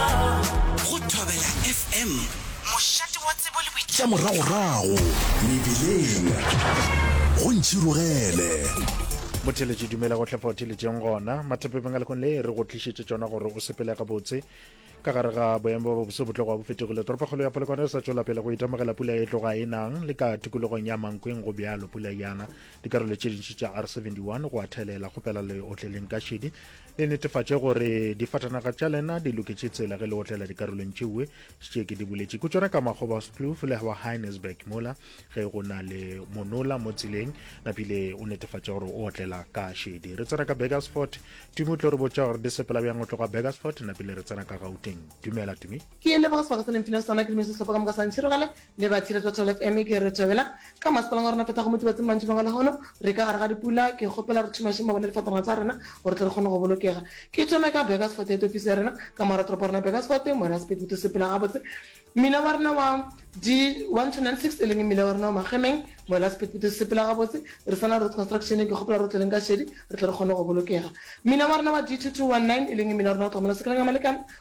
Go Thobela FM, mošate wa tsebo le boitšhidušo. Tša moragorago mebeleng go ntšhirogele. Botheletše dumela go tlhafao theletšeng gona mathepe bengalekong le re go tlišetše tšona gore o sepele gabotse ka gare ga boemo ba bobose botlogo bo fetogile toropakgolo ya polokwane e sa tšwela pele go itemogela pula e tloga e nang le ka tikologong ya mankweng go bjalo pula yana dikarolo tše dintši tša r71 go a thelela kgopela le otleleng ka šedi le netefatše gore difatanaga tša lena di loketše tsela ge le otlela dikarolong tšeue tše ke di boletše ko tsona ka makgobaskloof le wa heinesburg mola ge go na le monola mo tseleng napile o netefatše gore o otlela ka šedi re tsena ka begersfort tumi o tlo re botša gore di sepela bjang o tloga begersfort napile re tsena ka gauteng dumela tumi ke le begersfort se ne mfina sona ke dumele sehlopha ka moka sa ntšhirogela Le ba Tshireletso Tall FM ke re thobela ka masepaleng wa rona tota go motibatsing mantšibeng a lehono re ka gare ga dipula ke kgopela re thumašeng mabone le difatanaga tsa rena gore tle re kgone go bolokega ke thome ka Burgersfort ya tofiso ya rena ka moga toropo rena Burgersfort moya sepedi to sepela gabotse mmila wa rena wa di 1296 e leng mmila wa rena wa magemeng moya sepedi to sepela gabotse re sana road construction ke kgopela re tleleng ka šedi re tle re kgone go bolokega mmila wa rena wa D2219 e leng mmila wa rena wa tlogamela sekeleng ya malekana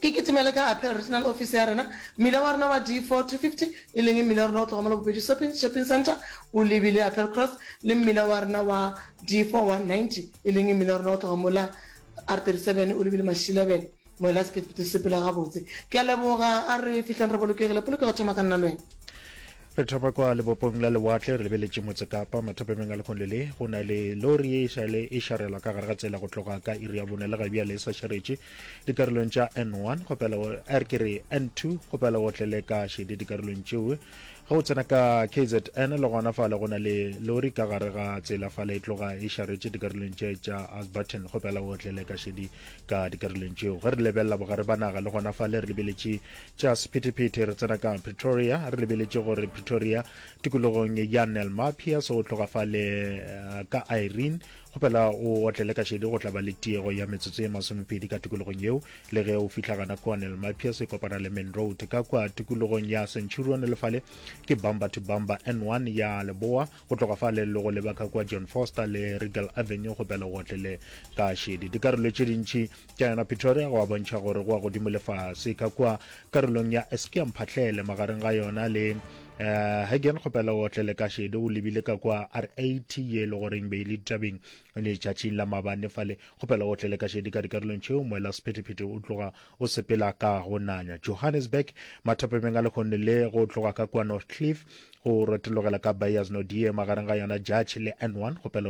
Ke kitimele ka Apel Regional Office ya rena. Mmila wa rena wa D4-250, e leng mmila wa rena o tloga mo la bobedi Sopin Shopping Centre o lebile Apel Cross, le mmila wa rena wa D4-190, e leng mmila wa rena o tloga mo la R37 o lebile Mashilabele. Moela sephethephethe se sepela gabotse. Ke a leboga. A re fihleng re bolokegile. Polokego thoma ka nna le wena. Re thapa kwa lebopong la lewatle re lebeletše motse Kapa. Mathapameng a lekgole le go na le lori ye e šale e šarela ka gare ga tsela go tloga ka iri ya bone le ga bjale e sa šaretše dikarolong tša N1 kgopela er ke re N2 kgopela o tlele ka šedi dikarolong tšeo ge o tsena ka KZN le gona fale go na le lori ka gare ga tsela fale e tloga e šaretše dikarolong tše tša Asbaton kgopela o tlele ka šedi ka dikarolong tšeo ge re lebelela bogare ba naga le gona fale re lebeletše Tša sephethephethe re tsena ka Pretoria, re lebeletše gore Pretoria, tikologong ya Nel Mapias go tloga fale ka Irene, go phela o otlele ka šedi go tla ba le tiego ya metsotso ye masomepedi ka tikologong yeo, le ge o fihla gana kua Nel Mapias e kopana le Main Road. Ka kua tikologong ya Centurion le fale ke bumper to bumper N1 ya leboa, go tloga fale le go leba ka kua John Foster le Regal Avenue go phela o otlele ka šedi. Dikarolo tše dintši Tša yona Pretoria go a bontšha gore go a godimo le fase. Ka kua karolong ya Eskia Mphahlele magareng ga yona le eh, Hagen kgopela o otlele ka šede o lebile ka kua RAT ye le goreng be le ditabeng le tšatšing la mabane fale kgopela o otlele ka šede ka dikarolong tšeo moela sephetephete o tloga o sepela ka go nanya Johannesburg mathapemeng a lekgonne le go tloga ka kua Northcliffe go rotelogela ka Beyers Nodie magareng ga yona Judge le N1 kgopela